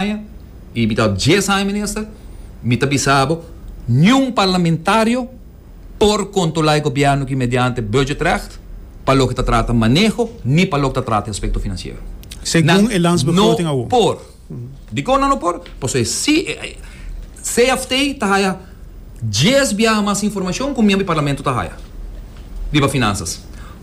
aña y mi ta dies aña minister mi ta bisa bo niun parlamentario por controla e gobierno aki mediante budget recht pa loke ta trata maneho ni pa loke ta trata e aspecto financiero nan no por dicor nan no por pasobra e si cft ta haya dies biaha mas informacion cu mi a mi parlamento ta haya riba finanzas.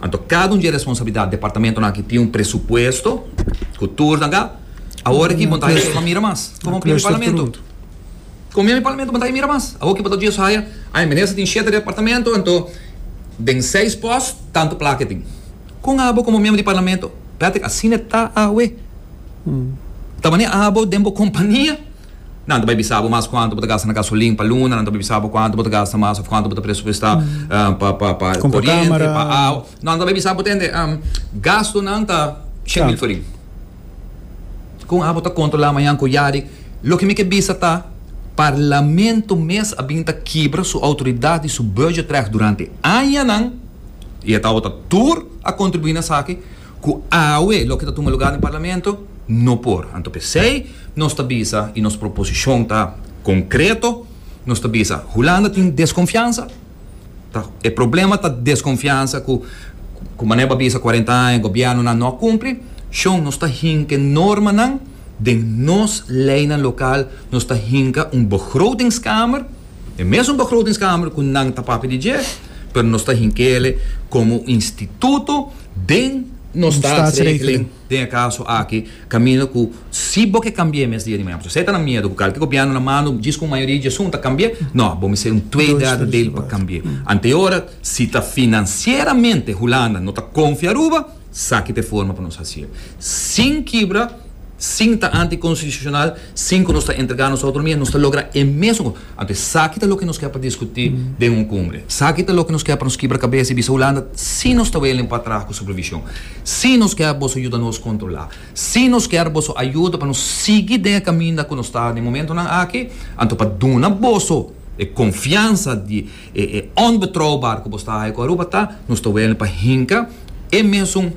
Anto cada un dje responsabilidad departamentonan aki tin un presupuesto cu tur nan ga awor aki bo ta haya suma mira mas como tin mi parlamento como mi parlamento bo ta haya mira mas awor aki bo ta dje so haya ay minister tin shete departamento anto den seis post tanto plaka e tin con abo como miembro di parlamento Patrick asina ta awe ta mane abo den bo compania. Nan ta bai bisa bo mas kuantu bo ta gasta na gasolin pa luna, nan ta bai bisa bo kuantu bo ta gasta mas òf kuantu bo ta presupuesta pa pa pa koriente, pa awa. Nan ta bai bisa bo tende gastunan ta shen mil forin. Kon abo ta kontrolá mañan ku yari? Loke mi ke bisa ta, Parlamento mes a bin ta kibra su outoridat di su budgetrècht durante añanan i e tabata tur a kontribuí na esaki. Cu awe loke ta tuma lugar den Parlamento no por. Anto pesey nos ta bisa y nos proposicion ta concreto, nos ta bisa Hulanda tin desconfiansa, ta e problema ta desconfiansa cu cu manera bo a bisa cuarenta aña gobiernonan no a cumpli, shon nos ta hinke normanan den nos leynan local, nos ta hinka un begrotingskamer, e mesun begrotingskamer cu nan ta papia di dje, pero nos ta hinkele como instituto. Den nos staatsregeling, den e kaso aki, kaminda ku si bo ke kambi'é mes dia di mañana, pasobra esei ta na miedu ku kalki gobièrnu na manda un djis ku un mayoria di asuntu a kambi'é, nò, bo mester un twee derde deel pa kambi'é. Ante ora, si ta finansieramente Hulanda no ta konfia Aruba, saki ta e forma pa nos hasi'é. Sin kibra, sin ta antikonstitushonal, sin ku nos ta entregá nos outonomia, nos ta logra e mesun kos. Anto esaki ta loke nos ke pa diskutí den un kumbre. Esaki ta loke nos ke pa nos kibra kabes i bisa Hulanda si nos ta welen pa traha ku supervishon, si nos ker boso yuda nos kontrolá, si nos ker boso ayuda pa nos sigui den e kaminda ku nos ta den momentunan aki, anto pa duna boso e konfiansa di E e onbetrouwbaar ku bos ta haai ku Aruba ta, nos ta wèlne pa hinka e mesun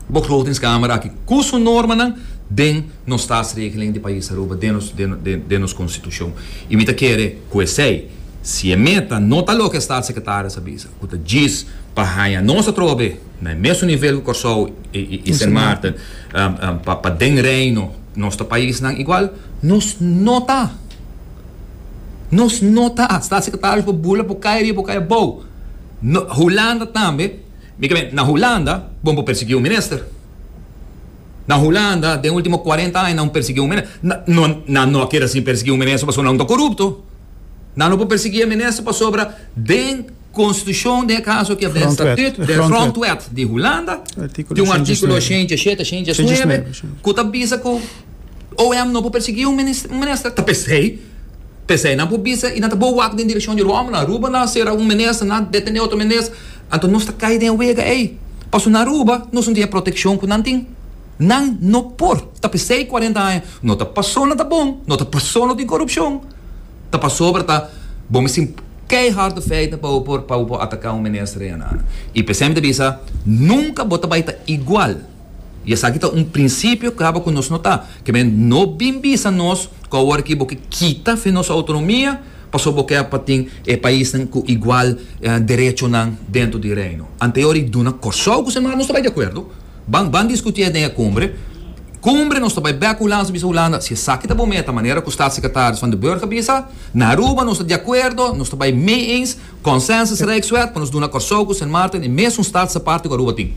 begrotingskamer aki ku su normanan den nos Staatsregeling di pais Aruba, den nos den nos konstitushon. I mi ta kere ku esei, si e meta no ta loke e Staatssekretaris a bisa, ku ta djis pa haña nos atrobe na e mesun nivel ku Kòrsou i Sint Maarten pa den Reino nos ta paisnan igual, nos no ta. Nos no ta hasta secretario por bula por cay ariba por cay abao. No, Hulanda tambe, mi ta mira, na Hulanda bon por persegui un minister. Na Hulanda den ultimo cuarenta aña nan persegui un minister. Na, no, nan no a kere así persegui un minister pasobra nan ta corupto. Nan no por persegui e minister pasobra den constitucion den e caso aki den statut, den grondwet di Hulanda tin un articulo shencha shete, shencha nuebe cu ta bisa cu, OM no por persiguí un minister ta p'esei, p'esei nan por bisa i nan ta bo wak den direkshon di Roma, Aruba nan a sera un minister, nan a detené otro minister, anto nos ta kai den e wega ei, pasobra na Aruba nos no tin e protekshon ku nan tin, nan no por ta p'esei kuarenta aña, no ta pasó nan ta bon, no ta pasó no tin korupshon, ta pasobra ta bo misti keihard di feiten pa bo por pa bo por ataká un minister ei anana i p'esei mi ta bisa nunka bo ta bai ta igual. I esaki ta un prinsipio caba cu nos no ta. Ke men no bin bisa nos cu awor aki bo ke kita fe nos autonomia pasobra bo ker pa tin e paisnan cu igual derechonan dentro di Reino. Anteor i duna Corsou cu semana nos ta bay di acuerdo. Ban ban discuti den e Cumbre. Cumbre nos ta bay bek Hulanda bisa Hulanda si esaki ta bo meta manera cu Staatssecretaris Van de Burg a bisa. Na Aruba nos ta di acuerdo, nos ta bay mee-eens. Consensus Rijkswet cu nos duna Corsou cu Sint Maarten e mesun staats aparte cu Aruba tin.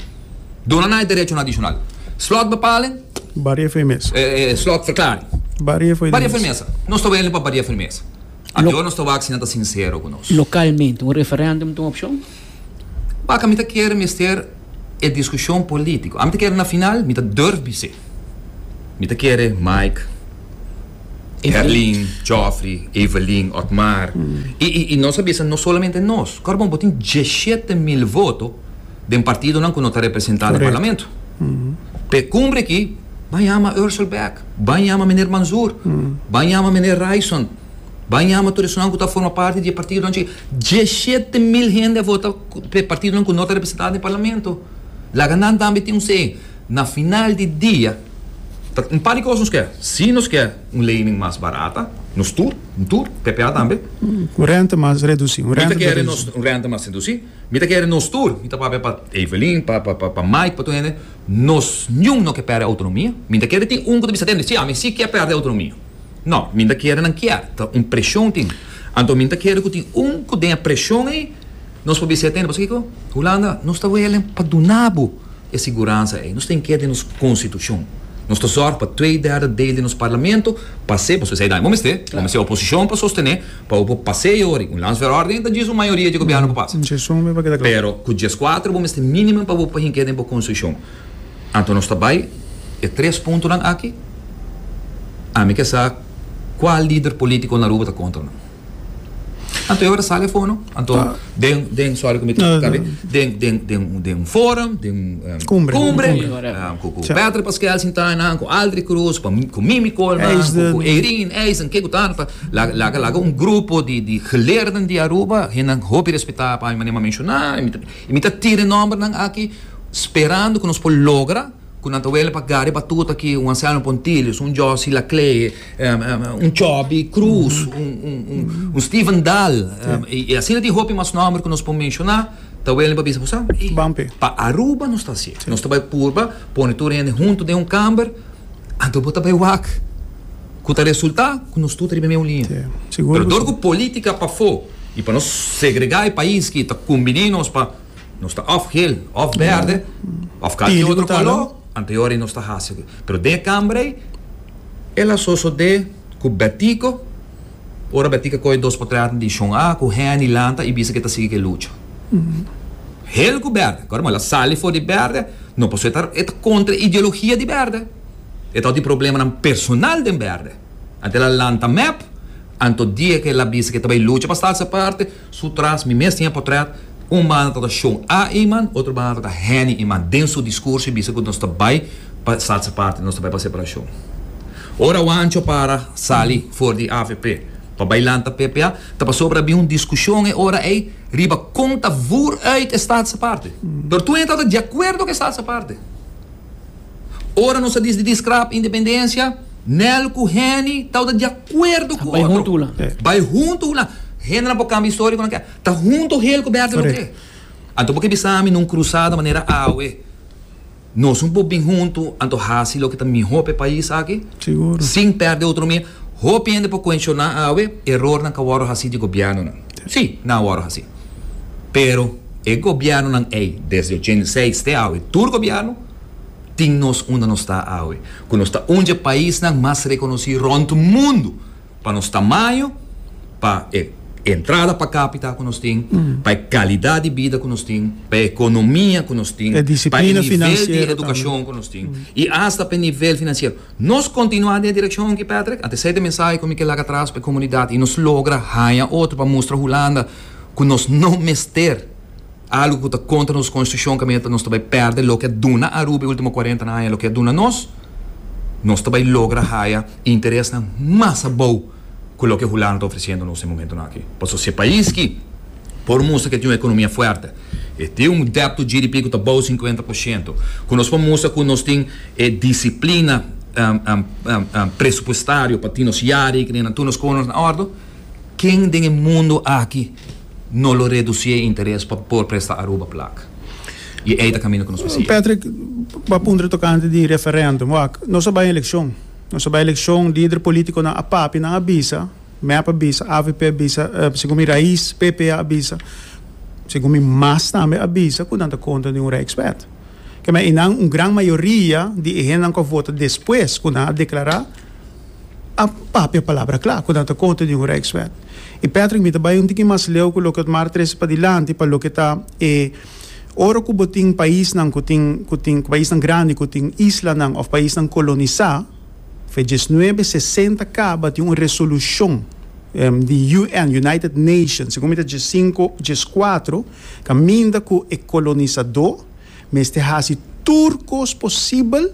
Duna na e derechon adishonal. Slotbepaling. Baria for e mesa. E slotverklaring. Baria for e mesa. Baria for e mesa. Nos ta wende pa baria for e mesa. Ajo nos ta wak si nan ta sincero cu nos. Localmente un referendum ta un opcion? Baka mi ta kere mester e discusion politico. Ami ta kere na final mi ta durf bis'e. Mi ta kere Mike. Herlin, Geoffrey, Evelyn, Otmar. I, i, i nos a bisa no solamente nos. Korbon, bo tin djeshete mil voto den partidonan ku no ta representá den parlamento. P'e kumbre aki, ban yama Ursel Bek, ban yama meneer Manzoor, ban yama meneer Raison, ban yama tur esnan ku ta forma parti di e partidonan chikí. Djeshete mil hende a vota p'e partidonan ku no ta representá den parlamento. Laga nan tambe tin un sey. Na final di dia, ta un par di kos nos kè. Si nos kè un leining mas barata, nos tur, un tur, ppa tambe. Un rente mas redusí, un rente redusí. Mi ta kere nos, un rente mas redusí. Mi ta kere nos tur, mi ta papia pa Evelyn, pa, pa, pa Mike, pa tur hende, nos niun no ke pèrdè outonomia. Mi ta kere tin un ku ta bisa tende, si, ami si kè pèrdè outonomia. No, mi ta kere nan kier, ta un preshon tin. Anto mi ta kere ku tin un ku den e preshon ei, Nos por bisa e tende, pasobra kiko? Hulanda, nos ta welen pa duna bo e siguransa ei. Nos ta inkere den nos konstitushon. Nos ta zòrg pa twee derde deel di nos parlamento pas'é, pasobra esei dai bo mester. Bo mester oposishon pa sostené pa bo por pas'é ei ori. Un landsverordening ta djis un mayoria dje gobièrnu pa pasa. Pero ku djes kuater bo mester minimum pa bo por hink'é den bo konstitushon. Anto nos ta bai e tres puntonan aki. Ami ke sa kual lider polítiko na Aruba ta kontra nan. Anto e ora sal e fono, anto den, den, sorry ku mi ta No, no, kabe, no. den, den, den, un- den un forum, den un em, Cumbre. cumbre, Cumbre, correct. em, ku, ku Tja. Patrick Pascual Sintana, ku Aldri Cruz, pa, ku Mimi Coleman, ku, Eisden. ku Eirin Eisen, ke ku ta, pa, la, laga, laga un grupo di, di geleerden di Aruba, hennan hopi respetá pa mi manera mi a menshoná, i mi ta, i mi ta tira e nòmbernan aki sperando ku nos por logra, Ku nan ta wele pa Gary Batuta ki un ansiano Pontilius, un Josy Laclée, un Chubby Cruz, un Steven Dahl, i asina tin hopi mas nòmber ku nos por menshoná, ta wele pa bisa ku sa? Ey, pa Aruba nos ta hasié. Nos ta bai purba pone tur hende huntu den un kamber, anto bo ta bai wak, ku ta resultá ku nos tur ta riba meun liña. Pero dor ku polítika pafó i pa nos segregá e pais ki ta kumbiné nos pa. Nos ta òf geel, òf bèrdè, òf kalke otro koló, anteori nos ta hasi akí. Pero den e kambra ei, el a sosodé ku Bètico, ora Bètico a kohe dos por tres dishon a ku Hèni lanta i bisa ku e ta sigui ku e lucha. Geel ku bèrdè. Kòrda? Mò el a sali for di bèrdè, no pasó e ta e ta kontra e ideologia di bèrdè. E ta òf di problemanan personal den bèrdè. Anto el a lanta mèp, anto dia ku el a bisa ku e ta bai lucha pa stadse parti, Su tras mi mes tin e potret, un banda ta ta Sean A. Eman, otro banda ta ta Henny Eman. Den su discurso e bisa cu nos ta bay pa salsa party, nos ta bay pa separacion. Ora Juancho para sali for di avp pa bay lanta ppa, ta pasobra a bin un discusion e ora ey riba con ta voer uit e salsa party. Pero tur hende ta ta di acuerdo cu e salsa party. Ora nos a dis di Discrap Independencia, Nel cu Henny tabata di acuerdo cu otro. Bai hunto hulan. Bai hunto hulan. Hendenan por cambia historia cu nan kier. Ta hunto hel cu Bert Deloke. Anto bo ke bisa mi na un crusada manera awe, nos un por bin hunto anto haci loke ta miho pa e pais aki sin perde autonomia. Hopi hende por cuestiona awe, erornan ka worde haci di gobiernonan. Si, nan a worde haci. Pero e gobiernonan ey, desde ochenta i seis te awe, tur gobierno. tin nos unda nos ta awe, cu nos ta un dje paisnan mas reconoci rond mundo pa nos tamaño, pa e entrada pa capita cu nos tin, pa e calidad di bida cu nos tin, pa e economia cu nos tin, pa e nivel di educacion cu nos tin y hasta pa e nivel financiero. Nos continua den e direccion aki, Patrick? Ante esey ta e mensahe cu mi kier laga atras pa e comunidad y nos logra haña otro pa mustra Hulanda cu nos no mester. Algu ku ta kontra nos konstitushon kaminda ta nos ta bai pèrdè loke a duna Aruba e último kuarenta aña i loke a duna nos. Nos ta bai logra haya interesnan mas abou ku loke Hulanda ta ofresiendo nos e momentunan aki. Pasobra si e pais ki por mustra ku e tin un ekonomia fuerte, e tin un debt to GDP ku ta abou sinkuenta por shento, ku nos por mustra ku nos tin e disiplina presupuestario pa tin nos yari i ku tin tur nos kosnan na òrdu, ken den e mundu aki no lo reduci e interes pa por presta Aruba plak. Y ey ta camino cu nos por sigui. Patrick, bo a puntra tocante di referendum. Wak, nos a bay eleccion. Nos a bay eleccion, lider politiconan a papia, nan a bisa, mep a bisa, avp a bisa, segun mi rais, PP a bisa, segun mi mas tambe a bisa cu nan ta contra di un rijkswet. Kema, y nan un gran mayoria di e hendenan cu a vota despues cu nan a declara, a papia palabra kla ku nan ta koto di un rijkswet. I Patrick mi ta bai un tiki mas leu ku loke Otmar trese padilanti pa loke ta e ora ku bo tin paisnan ku tin ku tin paisnan grandi ku tin islanan òf paisnan kolonisá f'e dies nuebe sesenta kaba tin un resolushon di UN United Nations segun mi ta dies sinku dies kuatro kaminda ku e kolonisadó mester hasi tur kos posibel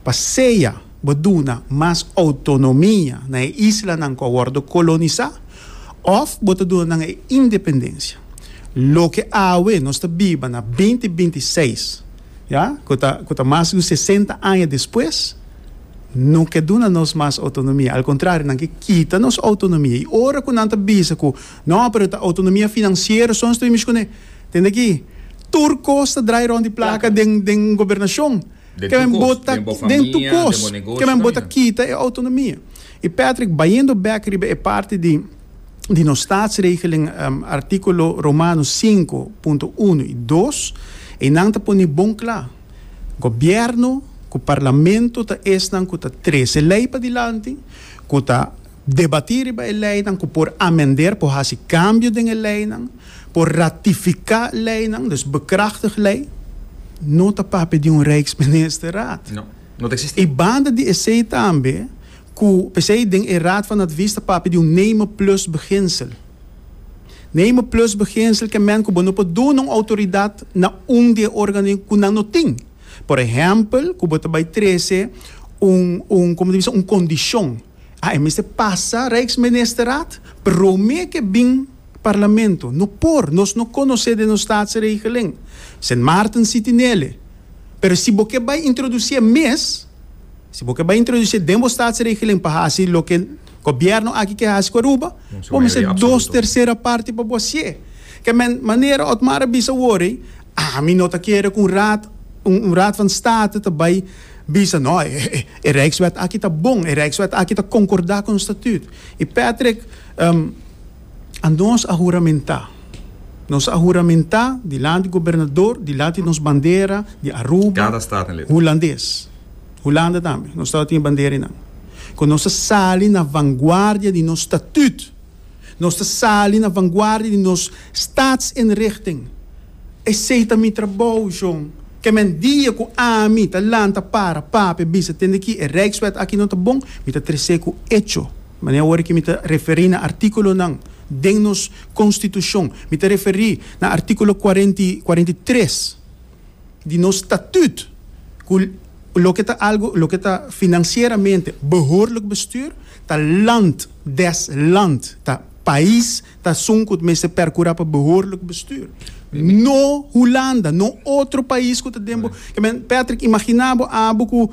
pa sea bo duna mas outonomia na e islanan ku a wòrdu kolonisá òf bo ta duna nan e independensia. Loke awe nos ta biba na binti binti seis, ya, ku ta ku ta mas ku sesenta aña despues, no ke duna nos mas outonomia. Al kontrario, nan ke kita nos outonomia. I ora ku nan ta bisa ku, No, pero ta outonomia finansiero so nos ta bin mishi kuné. Tende aki, tur kos ta drai rònt di plaka den den gobernashon. Keren bota den tu kos, keren bota kita e autonomia. I Patrick bayendo bek riba e parti di di nos Staatsregeling, artikulo Romanos sinku punto unu i dos, einan ta pone bon kla, Gobièrnu ku parlamentu ta esnan ku ta trese lei padilanti, ku ta. Debatí riba e leinan ku por amender, por hasi kambio den e leinan, por ratifiká leinan, dus bekrachtig lei, no ta papia di un Rijksministerraad. No, no ta eksistí. I banda di esei tambe ku p'esei den e Raad van Advies ta papia di un name plus beginsel. Name plus beginsel ke mènt ku bo no por duna un outoridat na un di e órganonan ku nan no tin. Por ehèmpel ku bo ta bai trese un un, komo ta bisa, un kondishon. A mester pasa Rijksministerraad, prome ke bin Parlamento. No por, nos no konosé den nos Staatsregeling. Sint Maarten siti nele. Pero si bo ke bai introdusie mes, si bo ke bai introdusie den bo Staatsregeling pa hasi loke Gobièrnu aki ke hasi ku Aruba, bo mester dos tersera parti pa bo hasié. Ke men, manera Otmar a bisa wor ei, Ami no ta kere ku un raad, un raad van state ta bai bisa no, e rijkswet aki ta bon, e rijkswet aki ta konkorda ku nos statuut. I Patrick, anos a huramentá, nos a huramentá dilanti gobernador, dilanti nos bandera di Aruba, hulandes, Hulanda tambe, nos tabata tin e bandera einan, ku nos ta sali na vanguardia di nos statuut. Nos ta sali na vanguardia di nos Staatsinrichting. Esei ta mi trabou, John. Kemen dia ku ami ta lanta para papia e bisa tende ki e Rijkswet aki no ta bon, mi ta tres'é ku echo. Manera ora ki mi ta referí na artíkulonan den nos Konstitushon, mi ta referí na artíkulo kuarenta i kuarenta i tres. di nos statut cu loke ta algo loke ta financieramente behoorlijk bestuur ta land des land ta pais ta sun cu mester percura pa behoorlijk bestuur no Hulanda no otro pais cu ta den bo Patrick imagina bo abo cu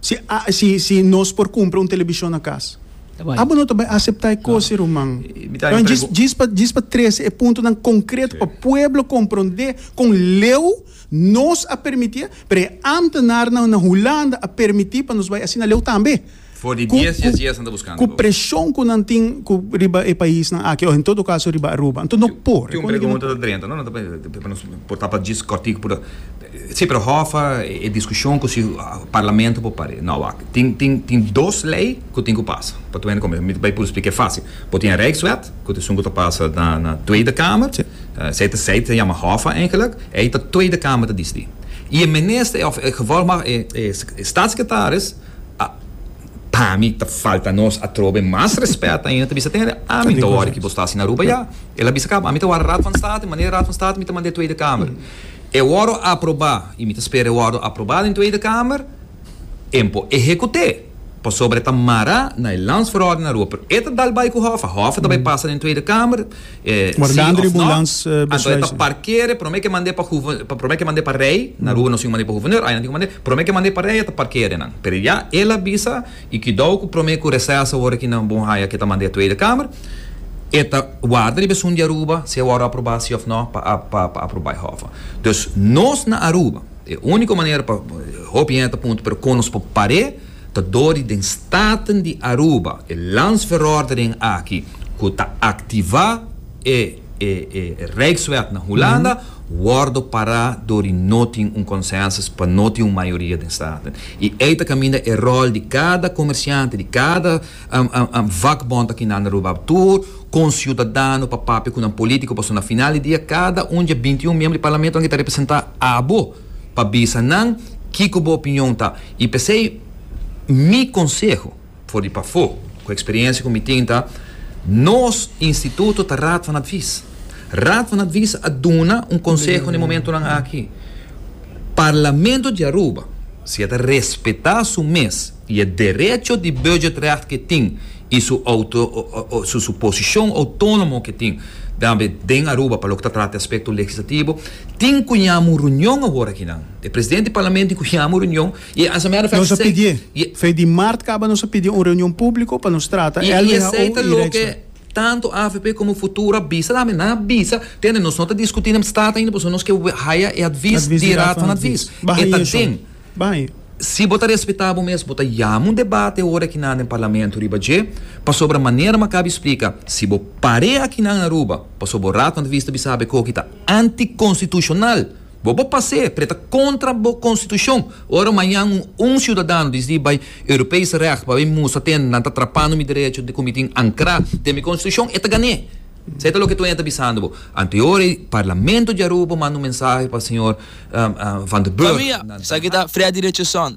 Si nos por cumpra un televishon na cas. Abo no ta bay acepta e cos, ruman. Djis pa trece e puntonan concreto pa pueblo comprende con leu nos a permiti e, pero e ambtenarnan na Hulanda a permiti pa nos bay asina leu tambe. For di dies dies dies nan ta buscando bo. Cu presion cu nan tin riba e paisnan aki, o en todo caso riba Aruba. Enton no por. Tin un pregunta ta drenta, no? Nan ta pensa, nos por tapa djis cortico pura. Si, pero hòfa e diskushon ku si parlamento por par'é. Nau wak. Tin, tin, tin dos lei ku tin ku pasa pa Tweede Komissar. Mi ta bai puru splika. E fásil. Bo tin e Rijkswet, ku ta esun ku ta pasa na, na Tweede Kamer. Esei ta, esei ta yama hòfa eigenlik. Ei ta Tweede Kamer ta disidí. I e minister òf e gevolgmag e, e Statssekretaris, a, pa mi ta falta nos atrobe mas rèspèt ainda. Ta bisa ten e, ami ta wòrdu ki bo sta asina Aruba ya. El a bisa kaba, ami ta wòrdu Raad van State, manera Raad van State mi ta mand'é Tweede Kamer. E wòrdu a aprobá i mi ta spera e wòrdu aprobá den Tweede Kamer en por ehekut'é pasobra e ta mará na e Landsverordening na Rua pero e ta dal bai ku Hòf a Hòf a ta bai pasa den Tweede Kamer sí òf nò anto e ta parker'e promé ke mand'é pa promé ke mand'é pa Rei na Rua nos tin ku mand'é pa Guverneur ayi nan tin ku mand'é promé ke mand'é pa Rei a ta parker'e nan pero ya el a bisa I kidau ku promé ku reseso ora ki nan bon haya ke ta manda e Tweede Kamer, e ta warda riba esun di Aruba si e wòrdu aprobá sí òf nò pa pa aprobá e hòf. Dus nos na Aruba e úniko manera pa hopi hende ta punta pero kon nos por par'é ta dor di den Staten di Aruba e landsverordening aki ku ta aktivá e e e Rijkswet na Hulanda wordo pará dor di no tin un consensus pa no tin un mayoria den Staten. I ei ta caminda e rol di cada comerciante, di cada vakbond aki na Aruba, tur con ciudadano pa papia cu nan politico pasobra na final di dia cada un dje binti un miembro di Parlamento aki ta representa abo pa bisa nan kico bo opinion ta. I p'esei mi conseho. For di pafó, ku eksperiensia ku mi tin ta, nos instituto ta Raad van Advies. Raad van Advies a duna un konseho na e momentunan aki, Parlamento di Aruba, si e ta respetá su mes i e derecho di budgetrecht ku e tin i su su posishon outónomo ku e tin den Aruba pa loke ta trata e aspekto legislativo, tin ku yama un runion awor akinan. E presidente di Parlamento tin ku yama un runion. Y a su mero efecto. Nos a pidié, fe di mart caba nos a pidié un reunion publico pa nos trata el, who y Rijksweg. Tanto avp como Futuro a bisa tambe, nan a bisa, tende nos no ta discuti na Staat ainda pasobra nos ke haya e advies di Raad van Advies. E ta den. Si bo ta respeta bo mes, bo ta yama un debate ora aki nan den Parlamento riba dje, pasobra manera mi a caba explica, si bo pare aki nan Aruba, pasobra bo Raad van Advies ta bisa bo e coki ta anticonstitucional. Bo bo pas'é preta kontra bo konstitushon. Ora mañan un un siudadano disidí bai Europees Recht pa bai mustra tenda nan ta trapando mi derecho di ku mi tin ankrá den mi konstitushon, e ta gan'é. Esei ta loke Toña ta bisando bo. Anteora e Parlamento di Aruba manda un mensahe pa señor Van der Burg. Pamia, esaki ta Freddy Richardson,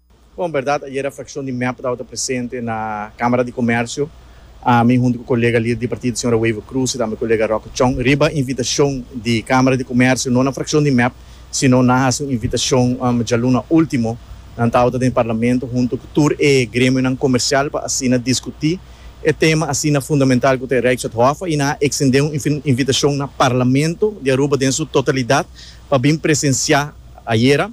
Bon, berdad ayer a frakshon di mep tabata presente na Kamara di Komersio, ami huntu ku kolega lider di partido señora Waiver Cruz i tambe kolega Roque Chong, riba invitashon di Kamara di Komersio, no na frakshon di mep, sino nan a hasi un invitashon djaluna ultimo, nan tabata den parlamento huntu ku tur e gremionan komersial pa asina diskutí e tema asina fundamental ku ta e Rijkswetthof i nan a eksendé un invitashon na Parlamento di Aruba den su totalidat pa bin presensiá ayer.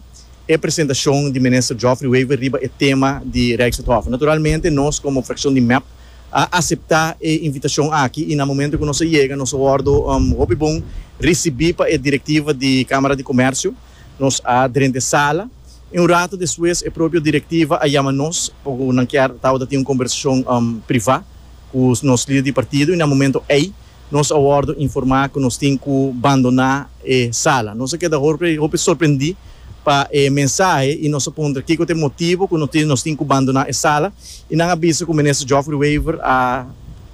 e presentacion di Minister Geoffrey Wever riba e tema di Rijkswethof. Naturalmente nos como fraccion di mep a acepta e invitacion aki y na momento cu nos a yega nos a wordo hopi bon ricibi pa e directiva di Camara di Comercio. Nos a drenta e sala y un rato despues e propio directiva a yama nos pa cu nan kier tabata tin un conversacion priva cu nos lider di partido y na momento ey Nos a wòrdu informá ku nos tin ku bandoná e sala. Nos a keda hopi hopi sorprendí pa e mensahe i nos a puntra kiko ta e motibu ku nos tin ku bandoná e sala i nan a bisa ku Minister Geoffrey Wever a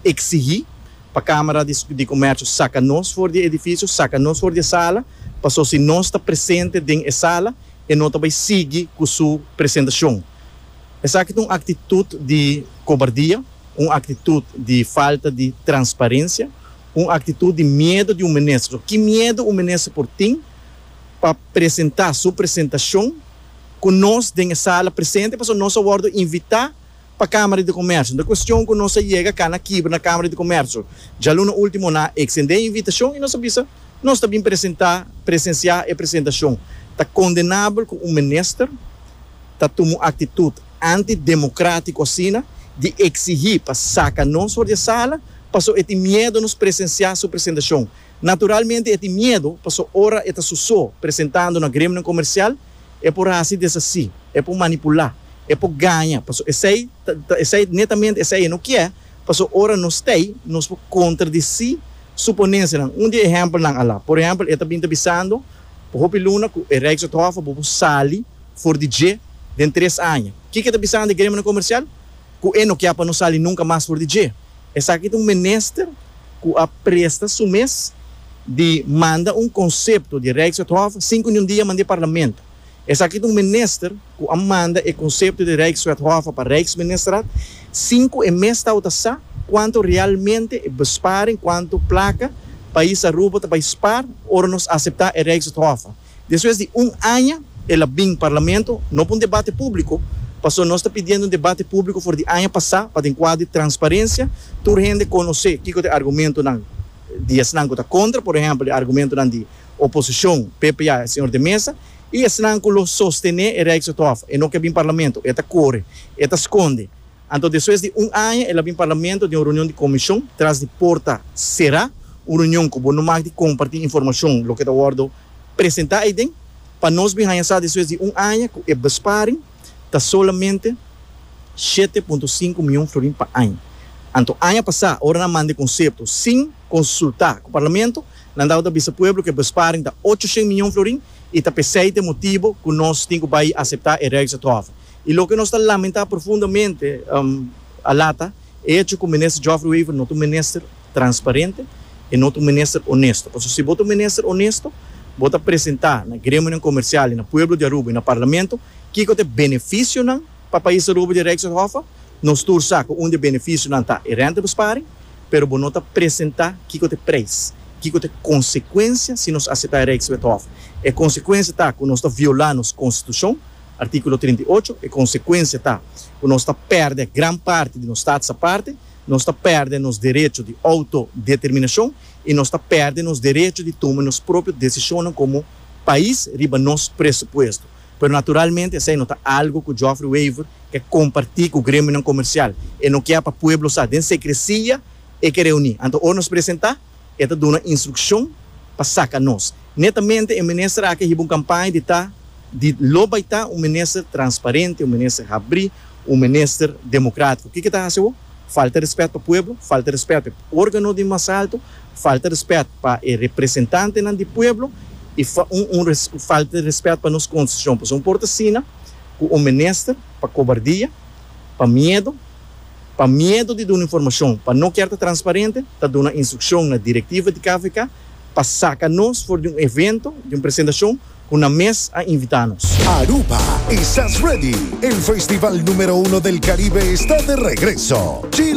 eksigí pa Kámara di Komèrshio saka nos for di e edifisio, saka nos for di e sala paso si nos ta presente den e sala e no ta bai sigui ku su presentashon. Esaki ta un aktitut di kobardia, un aktitut di falta di transparensia, un aktitut di miedu di un minister. So ki miedu un minister por tin pa presentá su presentashon ku nos den e sala presente pasobra nos a wòrdu invitá pa Kámara di Komersio. Nan kuestion ku nos a yega kana kibra na Kámara di Komersio. Djaluna último nan a eksendé e invitashon i nos a bisa nos ta bin presentá, presensiá e presentashon. Ta kondenabel ku un minister. ta tuma un aktitut anti-demokratiko asina di eksigí pa saka nos for di e sala paso e tin miedo nos presensiá su presentashon. Naturalmente e tin miedo paso ora e ta su so presentando na gremionan komersial e por hasi desasí, e por manipulá, e por gaña paso esei ta esei netamente esei e no kier paso ora nos t'ei nos por kontradisí su ponensianan. Un di e ehèmpelnan a la por ehèmpel e ta bin ta bisando pa hopi luna ku e Rijkswet Hof a bo por sali For di dje, den tres aña. Kiko e ta bisanan di e gremionan komersial? Ku e no kia pa no sali nunka mas for di dje. Esaki ta un minister ku a presta su mes di manda un konsepto di Rijkswethof sin ku niun dia a manda e parlamento. Esaki ta un minister ku a manda e konsepto di Rijkswethof pa Rijksministraat sin ku e mes tabata sa kuantu realmente e besparing, kuantu plaka pais Aruba ta bai spaar ora nos aseptá e Rijkswethof. Despues di un aña el a bin Parlamento, no pa un debate público, pasobra nos ta pidiendo un debate público for di aña pasá pa den kuadro di transparencia tur hende konosé kiko ta e argumentonan di esnan ku ta kontra, por ehèmpel e argumentonan di oposishon, PPA, e señor de Mesa, i esnan ku lo sostené e Rijkshof. E no ke bin Parlamento, e ta kore, e ta skonde. Anto despues di un aña el a bin Parlamento den un reunion di Comishon tras di porta será, un reunion cu bo no mag di comparti informacion loke ta wordo presenta aiden, pa nos bin haña sa despues di un aña cu e besparing ta solamente shete punto sinku miyon florin pa aña. Anto aña pasa ora nan manda e concepto sin consulta cu Parlamento, nan tabata bisa pueblo cu e besparing ta ocho shen miyon florin y ta pesey ta e motibo cu nos tin cu bay acepta e Rijksatrofe. I loke nos ta lamentá profundamente a lata e echo ku Minister Geoffrey Wever no ta un minister transparente, e no ta un minister onesto. Pasobra si bo ta un minister onesto, bo ta presentá na gremionan komersial i na pueblo di Aruba i na Parlamento kiko ta e benefisionan pa pais Aruba di Rijkshof. Nos tur sa ku un di e benefisionan ta e rentebesparing, pero bo no ta presentá kiko ta e prijs, kiko ta e konsekuensia si nos aseptá e Rijkswethof. E konsekuensia ta ku nos ta violá nos konstitushon. Artíkulo trinta i ocho, E konsekuensia ta ku nos ta pèrdè gran parti di nos Staats Aparte, nos ta pèrdè nos derecho di outodeterminashon i nos ta pèrdè nos derecho di tuma nos propio desishonnan komo pais riba nos presupuesto. Pero naturalmente esei no ta algu ku Joffrey Wever ke kompartí ku gremionan komersial. E no ke pa pueblo sa. Den sekresia e ke reuní. Anto ora nos presentá? E ta duna instrukshon pa saka nos. Netamente e minister aki a hiba un kampaña di ta di lo bai ta un minister transparente, un minister habrí, un minister demokratiko. Kiko e ta hasi awo? Falta rèspèt pa pueblo, falta rèspèt pa e órgano di mas alto, falta rèspèt pa e representantenan di pueblo i falta rèspèt pa nos konstitushon. Pasobra un por ta asina ku un minister pa kobardia, pa miedu. pa miedo di duna informashon, pa no kier ta transparente, ta duna instrukshon na direktiva di KVK pa saka nos for di un evento di un presentashon ku nan mes a invitá nos. Aruba, Esas Ready? El festival numero uno del Caribe está de regreso! Chill!